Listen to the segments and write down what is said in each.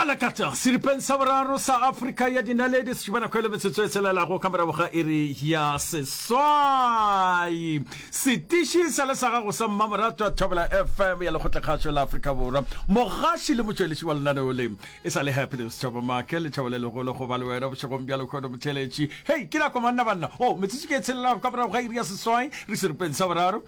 balakata seripeng sa boraro sa afrika ya dinaledi setšibanakhwele metsotso e selelago ka morago ga iri ya seswai setiši sa le sa gago sa mmamoratwa thobela fm ya lekgotlekgašo la afrika borwa mogaši le motšweletši wa lenaneo le e sa le happiness thabo make lethabo le legolo go ba le wena bošegong bja lekgono motheletši hei ke nako manna banna o oh, metsotso ke e tshelelago ka morago ga iri ya seswai re seripeng sa boraro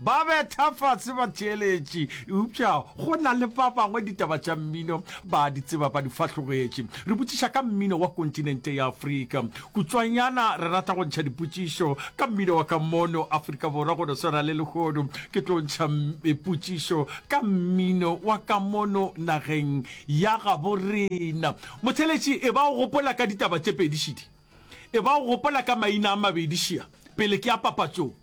Ba betha fase batheeletši, eupša go na le ba bangwe ditaba tša mmino ba a di tseba, ba di fahlogetše. Re botšiša ka mmino wa kontinente ya Afrika. Kutswanyana re rata go ntšha dipotšišo ka mmino wa ka mono Afrika Borwa go no swana le lehono. Ke tlo ntšha potšišo ka mmino wa ka mono nageng ya gabo rena. Motheeletši, e ba o gopola ka ditaba tše pedi šidi? E ba o gopola ka maina a mabedi šia pele ke ya papatšong?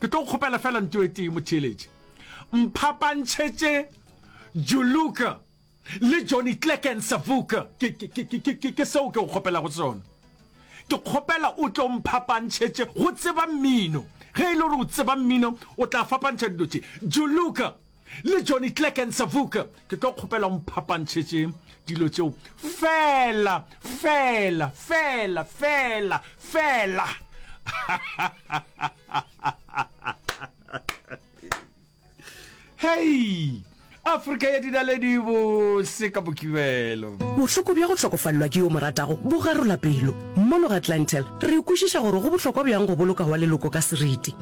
Ke tlo kgopela fela nto e tee motheeletše. Mphapantšhetše Juluka le Johnny Clecken Savuka. Ke, ke, ke, ke, ke, ke seo ke go kgopelago sona. Ke kgopela o tlo mphapantšhetše go tseba mmino. Ge e le gore o tseba mmino, o tla fapantšha dilo tše. Juluka. le Johnny Clegg and Savuk ke tlo kgopela mphapantšhetše dilo tšeo fela fela fela fela fela hei afrika ya dinaledi bose ka bokibelo bohloko bja go hlokofalelwa ke yo moratago bo garola pelo mono ga clantel re kwešiša gore go bohlokwa bjang go boloka wa leloko ka seriti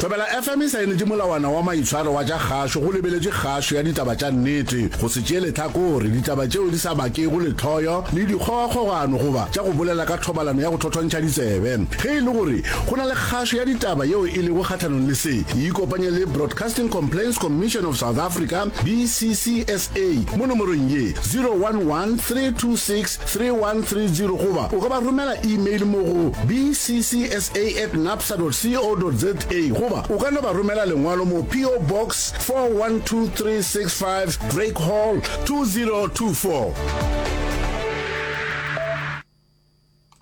Thobela FM e saenetše molawana wa maitshwaro wa tša kgašo go lebeletše kgašo ya ditaba tša nnete, go se tšee lehlakore, ditaba tšeo di sa bakego lehloyo le dikgogakgogano goba tša go bolela ka thobalano ya go thothontšha ditsebe. Ge e le gore go na le kgašo ya ditaba yeo e lego kgahlanong le se, e ikopanye le Broadcasting Complaints Commission of South Africa, BCCSA, mo nomorong ye, 011 326 3130 goba o ka ba romela email mo go bcsa at napsa dot co dot za goba o ka no ba romela lengwalo mo PO Box 412365 Drake Hall 2024.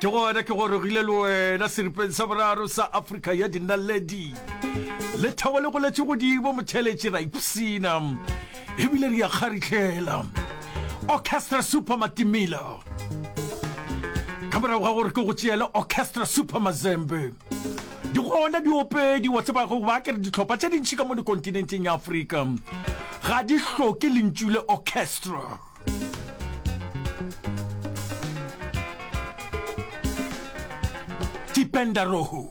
Ke gona ke gorogile le wena seripeng sa boraro sa Afrika ya dinaledi. Lethabo le goletše godimo motheletši, ra ipshina ebile re a kgarihlela. Orchestra Super Matimila. Ka morago ga gore ke go tšeele Orchestra Super Mazembe. Di gona diopedi wa tseba go ba ke re ditlhopha tše dintši ka mo dikontinenteng ya Afrika ga di hloke lentšu le orchestra. Tipenda Rohu.